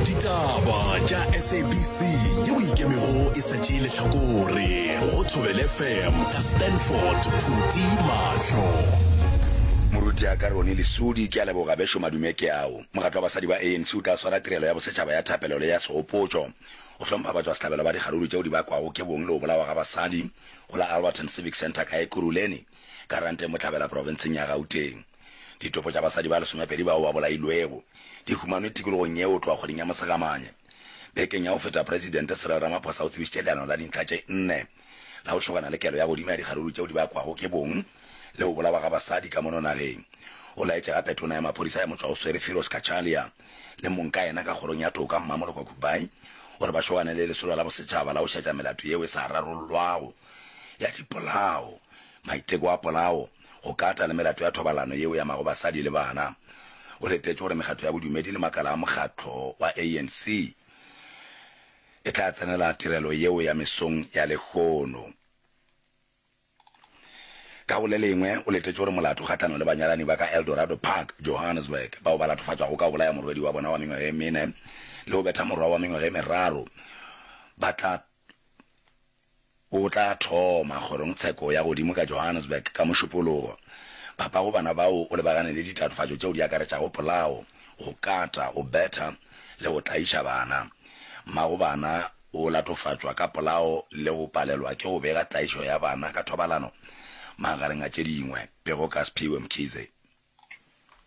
ditaba tša sabc yeo e ikemego e sa tšee lehlakore go thobel fm ka stanford phuti mahlo moruti ya ka rone lesodi ke a leboga bešo madume ke ao mogatlo wa basadi ba anc o tla swara tirelo ya bosetšhaba ya thapelo le ya segopotšo go hlompha batswa sehlabelo ba dikgaruru tšeo di bakwago ke bong le go bolawa ga basadi go la alberton civic centre ka ekuruleni ka ranteng botlhabela profenseng ya gauteng Ditopo tša basadi ba lesomepedi bao ba bolailwego di humanwe tikologong yeo go tloga kgweding ya Mosegamanye. Bekeng ya go feta Presidente Cyril Ramaphosa o tsebišitše leano la dintlha tše nne la go šogana le kelo ya godimo ya dikgaruru tšeo di bakwago ke bong le go bolawa ga basadi ka mono nageng. O laetše gape Tona ya Maphodisa ya Motšwaoswere Firoz Cachalia le mong ka yena ka Kgorong ya Toka Mmamoloko Kubayi gore ba šogane le lesolo la bosetšhaba la go šetša melato yeo e sa rarollwago ya dipolao, maiteko a polao, go kata le melato ya thobalano yeo e amago basadi le bana. O letetše gore mekgatlo ya bodumedi le makala a mokgatlo wa ANC e tla tsenela tirelo yeo ya mesong ya lehono. Ka go le lengwe, o letetše gore molato kgahlano le banyalani ba ka Eldorado Park, Johannesburg, bao ba latofatšwago ka go bolaya morwedi wa bona wa mengwaga e mene le go betha morwa wa mengwaga e meraro ba tla O tla thoma kgorongtsheko ya godimo ka Johannesburg ka Mošupologo. Papa go bana bao o lebagane le ditatofatšo tšeo di akaretšago polao, go kata, go betha le go tlaiša bana. Mma go bana o latofatšwa ka polao le go palelwa ke go bega tlaišo ya bana ka thobalano, magareng a tše dingwe. Pego ka Sphiwe Mkhize.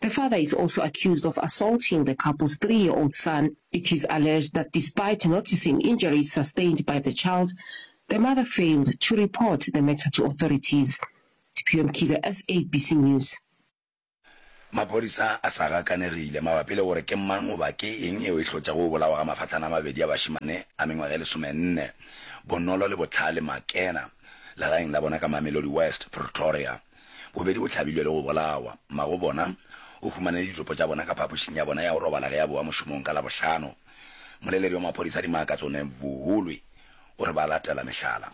The father is also accused of assaulting the couple's three-year-old son. It is alleged that despite noticing injuries sustained by the child, the mother failed to report the matter to authorities. Diphio Mkhize, SABC News. Maphodisa a sa gakanegile mabapi le gore ke mang goba ke eng yeo e hlotšago go bolawa ga mafatlana a mabedi a bašemane a mengwaga e lesomenne, Bonolo le Bohlale Makena, legaeng la bona ka Mamelodi West, Pretoria. Bobedi bo hlabilwe le go bolawa. Mmago bona o humanele ditopo tša bona ka phapošing ya bona ya go robala ge a bowa mošomong ka Labohlano. Moleleri wa maphodisa Dimma Katsone Vuhulwi o re ba latela mehlala.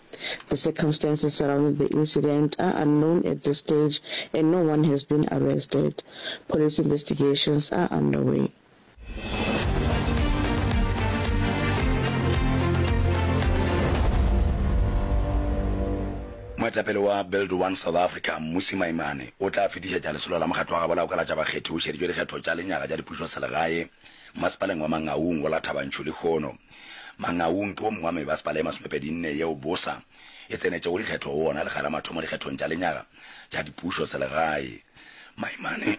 The circumstances surrounding the incident are unknown at this stage and no one has been arrested. Police investigations are underway. Moetapele wa Build One South Africa, Mmusi Maimane, o tla fetišetša Lesolo la Mokgatlo wa Gabo la go Kalatša Bakgethi o šeditšwe dikgetho tša lenyaga tša dipušoselegae Masepaleng wa Mangaung go la Thabantšhu lehono. Mangaung ke wo mongwe wa mebasepala ye masomepedi nne yeo bosa e tsenetšego dikgetho go wona le gare ga mathomo dikgethong tša lenyaga tša dipušoselegae. Maimane.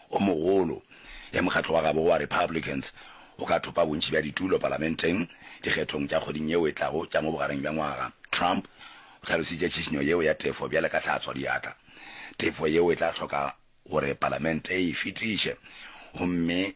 o mogolo ge mokgatlo wa gabo wa Republicans o ka thopa bontši bja ditulo palamenteng dikgethong tša kgweding yeo e tlago tša mo bogareng bja ngwaga. Trump o hlalositše tšhišinyo yeo ya tefo bjale ka hlatswa diatla. Tefo yeo e tla hloka gore palamente e e fetiše gomme,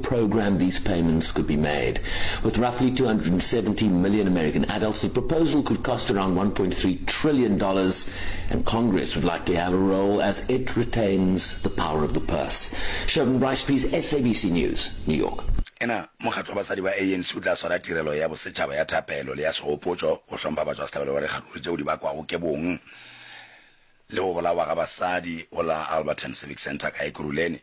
program these payments could be made. With roughly 270 million American adults, the proposal could cost around $1.3 trillion, dollars, and Congress would likely have a role as it retains the power of the purse. Sheldon Bryce, please, SABC News, New York. Ena mokgatlo wa basadi wa ANC o tla swara tirelo ya bosetšhaba ya thapelo le ya segopotšo go hlompha batšwa sehlabelo wa dikgaruru tšeo di bakwago ke bong le go bolawa ga basadi go la Alberton Civic Centre ka Ekurhuleni.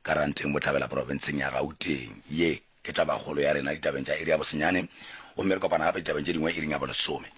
Karanteng Bohlabela Profenseng ya Gauteng. Ye ke tabakgolo ya rena ditabeng tša iri ya bosenyane gomme re kopana gape ditabeng tše dingwe iring ya bolesome.